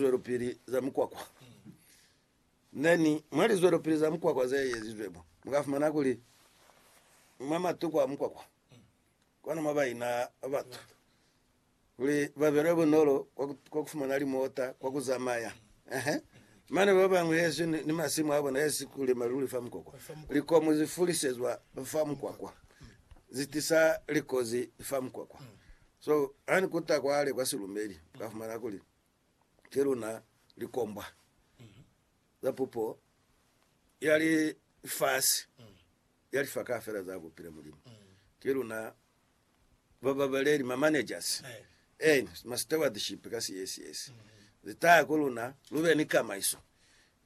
zwelopili za mukwakwa. Then mwa lizwelopili za mukwakwa ze ezizwe mo, mu ka fumana kuli mwa matuku a mukwakwa kona mwa ba ina batu kuli ba belwe bunolo kwa ku fumana limota kwa ku zamaya. Ehe. Mane ba bangwe hesi ni, ni masimu a bona hesi kulima luli fa mukwakwa. Likomu zi fulisezwa fa mukwakwa, zi tisa likozi fa mukwakwa. So, ha ni kuta kwale kwa silumbeli, mu ka fumana kuli ki luna likombwa za pupo ya lifasi ya lifa kaafela za bupile Mulimu. Ki luna bababaleli, ma managers, eena, ma stewardship ka siesiesi. Li taha ku luna lu be ni kamaiso.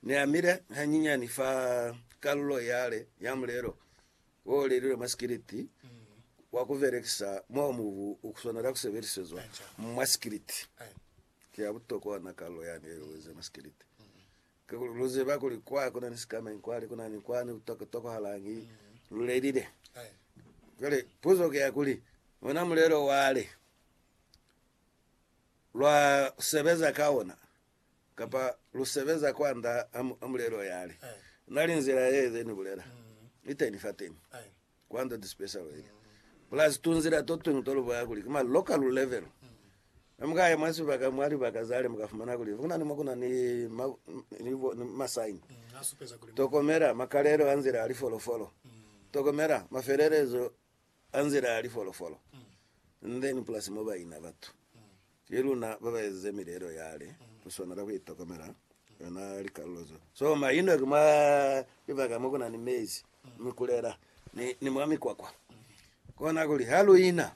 Ni amile hanyinyani fa kalulo yale ya mulelo Wo lelilwe mwa sikiliti wa ku belekisa mo mubu u swanela ku sebelisezwa mwa sikiliti. Ki ya butokwa ona kalulo yani ye lu eze mwa sikiliti. Kakuli lu ziba kuli kwa ku na ni sikamañi, kwani ku na ni kwani ku ka tokahalañi. Lu lelile. Cwale puzo ki ya kuli, ona mulelo wale lwa sebeza ka ona Kapa lu sebeza kwanda ha mulelo yale na li nzila ye ze ni bulela iteni fateni kwanda this special way plus tu nzila to twingi to lu boya kuli ki ma local level ha muka ya mwa sibaka mwa libaka zale muka fumana kuli kuna ni mo kuna ni ma ni bo ni ma sign tokomela makalelo a nzila a lifolofolo tokomela mafelelezo ka nzila ya lifolofolo ndeñi pulasi mo ba ina batu. Ki luna ba ba ezize milelo yale, lu swanela ku itokomela yona likalulo zo. So maino ki mwa libaka mo ku na ni mezi, mikulela, ni, ni mwa mikwakwa. Kona kuli ha lu ina,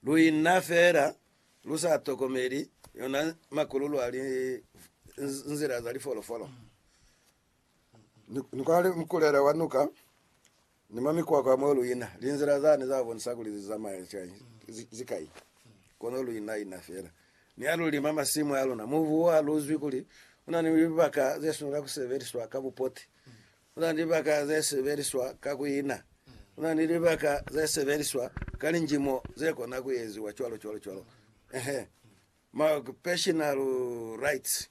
lu ina feela lu sa tokomeli yona makululu a li, nzila za lifolofolo. Ni, ni kwa li, mikulela wa nuka Ni mwa mikwakwa mo lu ina, linzila zani za bonisa kuli li zamaya cwañi? Ki kai? Kono lu ina ina fela. Ni ha lu lima masimu a luna, mubu wa luzwi kuli u na ni libaka ze swanela ku sebeliswa ka bupoti. U na ni libaka ze sebeliswa ka ku ina. U na ni libaka ze sebeliswa ka linjimo ze kona ku eziwa cwalo cwalo cwalo. Ehe. ma occupational rights,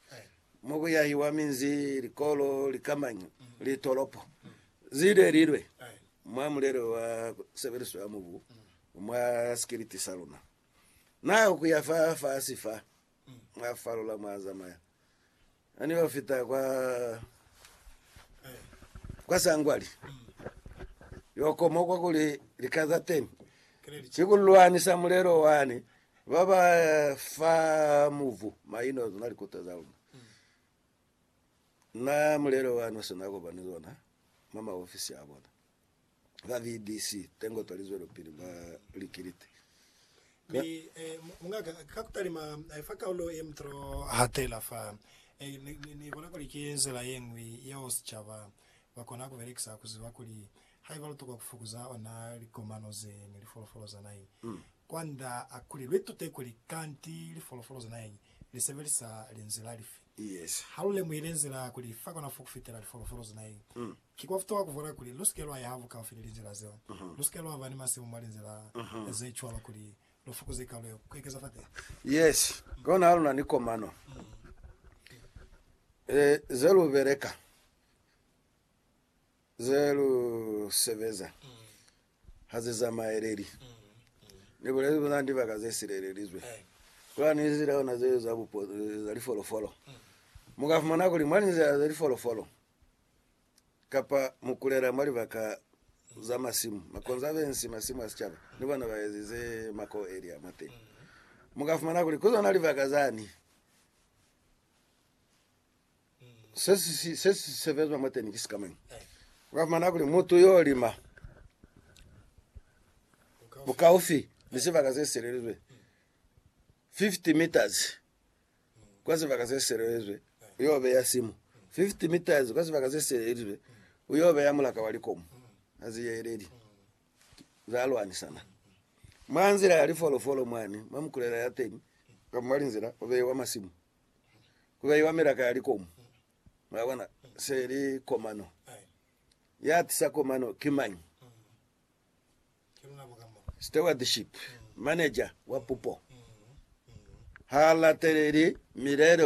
mo ku yahiwa minzi, likolo, likamanyo, litolopo, zide lilwe, mwa mulelo wa sebeliso ya mubu mwa sikiliti sa luna. Na ku ya fa fasi fa, mwa falola mwa zamaya. Ha ni yo fita kwa, kwa sangwali yo koma kwa kuli lika za teni ki ku lwanisa mulelo wani ba ba fa mubu maino zona likuta za luna. Na mulelo wani u si na ku ba ni zona mwa maofisi a bona. ba BBC tengo twa lizwelopili ba likiliti. Mi, eh, mungaka, ka kutalima, eh, fa kaulo ye mutolo hatela fa, eh, ni, ni, ni bona kuli ki nzila yeñwi yeo sicaba ba kona kubelekisa kuziba kuli haiba lutokwa kufukuza ona likomano ze ni lifolofolo za naheñi, kwanda a kuli luitute kuli kanti lifolofolo za naheñi lisebelisa linzila lifi. Yes. Ha lulemuhile nzila kuli fa kona fo kufitela lifolofolo za naheñi, Ki kwa futoha ku vwala kuli lu si ke lwa yaha bukaufi ni linzila zeo. Lu si ke lwa ba ni masimu mwa linzila ze cwalo kuli lu fukuze kalo ya ku ekeza fateha. Yes, kona ha lu na ni komano ze lu beleka, ze lu sebeza ha ze zamaeleli. Ni bulezi kuli na ni libaka ze silelelizwe, ku na ni linzila ona zeo za lifolofolo. Mu ka fumana kuli mwa linzila za lifolofolo, kapa mu kulela mwa libaka za masimu, makonza be nsi masimu a sicaba ni bona ba ezize mako elia mwa teni. Mu ka fumana kuli ku zona libaka zani se si se si sebezwa mwa teni ki sikamañi. U ka fumana kuli mutu yo lima bukaufi ni sibaka se selelizwe 50 meters kwa sibaka se sielelizwe, u y'o beya simu 50 meters kwa sibaka se sielelizwe, u y'o beya mulaka wa likomu ha zi yeleli za lwanisana mwa nzila ya lifolofolo mwani mwa mikulela ya teni, kamba mwa linzila ku beiwa masimu, ku beiwa milaka ya likomu. Mwabona, se li komano. Ya tisa komano ki mañi? Stewardship Manager wa pupo ha lateleli milelo